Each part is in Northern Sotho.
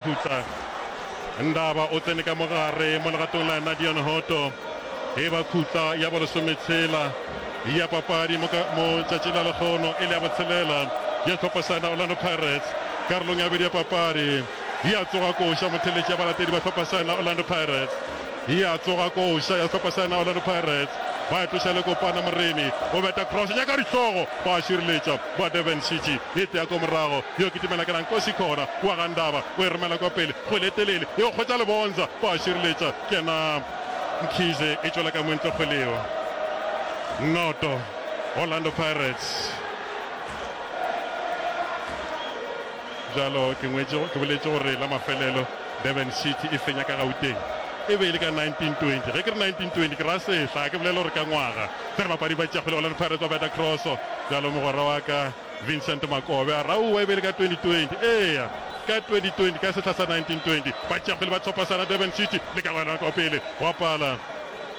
Khutla. Ndaba o tsene ka mo gare mo legatong la Nadia Nhoto. E ba khutla ya bolesometshela ya papadi mo ka mo tšatšing la lekgono e le ya botshelela ya hlopha sa yona Orlando Pirates. Karolong ya bobedi ya papadi ya tsoga koša motheletši ya balatedi ba hlopha sa yona Orlando Pirates. Ya tsoga koša ya hlopha sa yona Orlando Pirates ba tloša le Kopana Moremi o beta cross nyaka dihlogo ba šireletša ba Durban City e tea ko morago yo kitimela ke Rankosi Khora wa ga Ndaba o e romela kwa pele kgwele e telele e kgwetša Lebonza ba šireletša kena Mkhize e tšwela ka montle kgwele yeo noto Orlando Pirates bjalo ke ngwetše ke boletše gore la mafelelo Durban City e fenya ka Gauteng e be e le ka 1920 ge ke re 1920 ke ra sehla ga ke bolela gore ka ngwaga Ge re bapadi ba tšea kgolego le re Pirates ba beta cross bjalo mogwera wa ka Vincent Makobe a raua e be e le ka 2020 eya ka 2020 ka sehla sa 1920 ba tšea kgwele ba thopasana Durban City le ka gona kwa pele gwa pala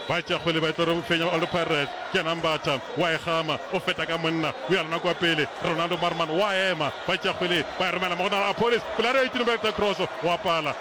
ba tšea kgwele ba e tlo re fenya Old Pirates ke yena Mbatha wa e gama o feta ka monna o ya lona kwa pele Ronaldo Marman wa ema ba tšea kgwele ba e romela mo go Nala Apolis pela re e tino ba e beta cross gwa pala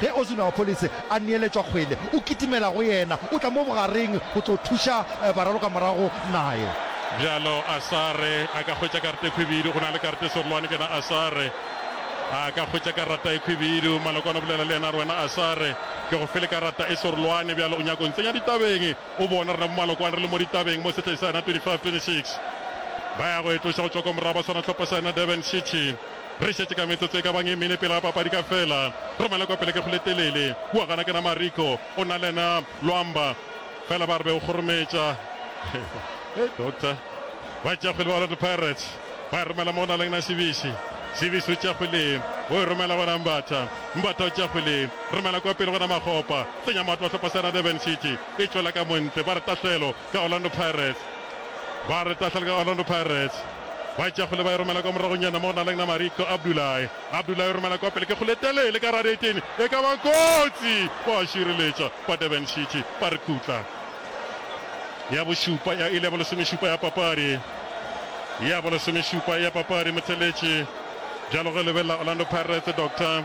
Ge Osunawapolise a neeletšwa kgwele, o kitimela go yena, o tla mo bogareng go tlo thuša baralokamorago naye. Bjalo Asare a ka hwetša karata e khwibidu, go na le karata e sorolwane ke na. Asare a ka hwetša karata e khwibidu. Malokwane o bolela le yena a re, Wena Asare, ke go file karata e sorolwane, bjalo o nyaka o ntsenya ditabeng. O bona rena bomalokwane re le mo ditabeng mo sehleng sa yena 25, 26 ba ya go e tloša go tšwa kwa morago ba swara hlopha sa yena Durban City. Re šetše ka metsotso e ka bang e mene pele ga papadi ka fela. Re mala kwa pele ke go le telele. Kua gana ke na Mariko. O na le na Lwamba. Fela ba re be o kgorometša. Hei doctor. Ba tšea kgwele ba Orlando Pirates. Ba e romela mo go na leng na Sibisi. Sibisi o tšea kgwele. O e romela go na Mbatha. Mbatha o tšea kgwele. Re mala kwa pele go na Makgopa. Tsenya matlo a sehlopha sa na Durban City. E tšwela ka mo ntle. Ba re tahlelo. ka Orlando Pirates. Ba re tahlele ka Orlando Pirates. Ba e tšea kgole ba e romela kwa moragonyana mo go na leng nama Rico Abdulai. Abdulai o romela kwa pele ke kgole e telele ka radetene e ka ba kotsi. Ba a šireletša ba Durban City ba re khutla. Ya bošupa ya ile ya bolesomešupa ya papadi. Ya bolesomešupa ya papadi Motšheletše bjalo ge lebelela Orlando Pirates Doctor.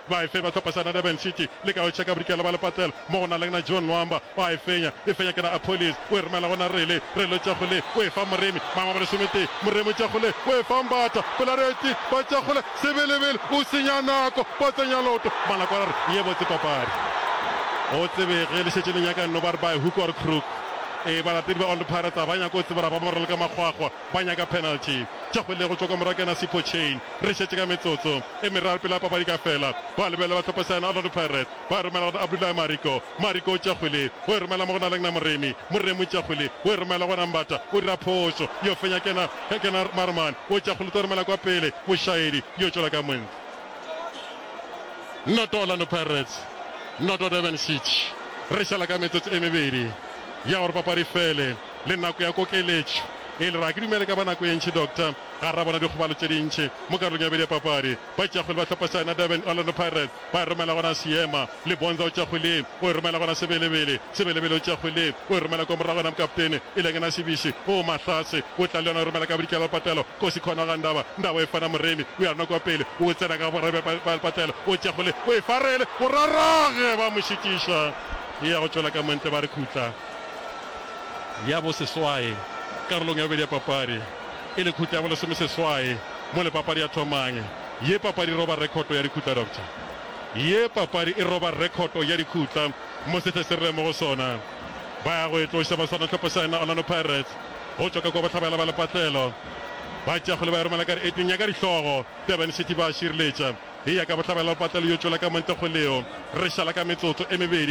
ba e fe ba hlophesa na Durban City le ka hwetša ka bodikela ba lepatlelo mo go na leng na John Nwamba wa e fenya e fenya ke na Appolis o e romela go na Rele Rele Tšakgole o e fa Moremi mangwe ba lesometee Moremi Tšakgole o e fa Mbata Pelareti ba Tšakgole Sebelebele o senya nako ba tsenya loto Malako a re ye botse papadi go tsebe ge le šetše le nyaka nno ba re by hook or crook ee balatedi ba Old Pirates a ba nyako tseba ra ba morelka makgwakgwa ba nyaka penalty. Tša go lego tšwa kwa morakena Sipho Chain. Re šetše ka metsotso e meraro pele ga papadi ka fela. Ba lebelela ba hlopa seano Orlando Pirates ba e romela go Abdullahi Mariko. Mariko o tša kgwele o e romela mo go Nalengna Moremi. Moremi o tša kgwele o e romela go Rambata. O dira phošo yo fenya ke Kenneth Marman. O tša kgwele o tlo romela kwa pele Mošaedi yo tšwela ka mong. Noto Orlando Pirates, noto Durban City. Re šala ka metsotso e mebedi ya gore papadi e fele. le nako ya kokeletšo e le ra. Ke dumela e ka ba nako e ntši, Doctor, gare ga bona dikgobalo tše dintši mo karolong ya bobedi ya papadi. Batšeakgwele ba hlopha sa yona Durban Orlando Pirates ba e romela gona seema. Lebonza o tšeakgweleng, o e romela gona Sebelebele. Sebelebele o tšeakgweleng, o e romela kwa morago gona mokaptene e leng ena Sibisi. Oo Mahlatse o tla le yona, o e romela ka bodikela go Patelo. Kosi Khona ga Ndaba, Ndaba o e fana Moremi. O ya rona kwa pele, o tsena ka borra bja ba le Patelo. O tšeakgweleng, o e fa Rele. Go rarage, ba mo šitiša, e ya go tšwela ka mo ntle, ba re khutla. ya boseswai karolong ya bobedi ya papadi e le khutla ya bolesomeseswai mo le papadi ya thomang. Ye papadi e roba rekhoto ya dikhutla, Doctor. Ye papadi e roba rekhoto ya dikhutla mo sethe se re leng mo go sona. Ba ya go e tloša ba swana hlopha sa yona Orlando Pirates go tšwa ka kwa bohlabela ba lepatlelo. Ba tšea kgole ba e romela ka dieteng ya ka dihlogo, Durban City ba šireletša e ya ka bohlabela ba lepatlelo yo tšwela ka montekgoleo re šala ka metsotso e mebedi.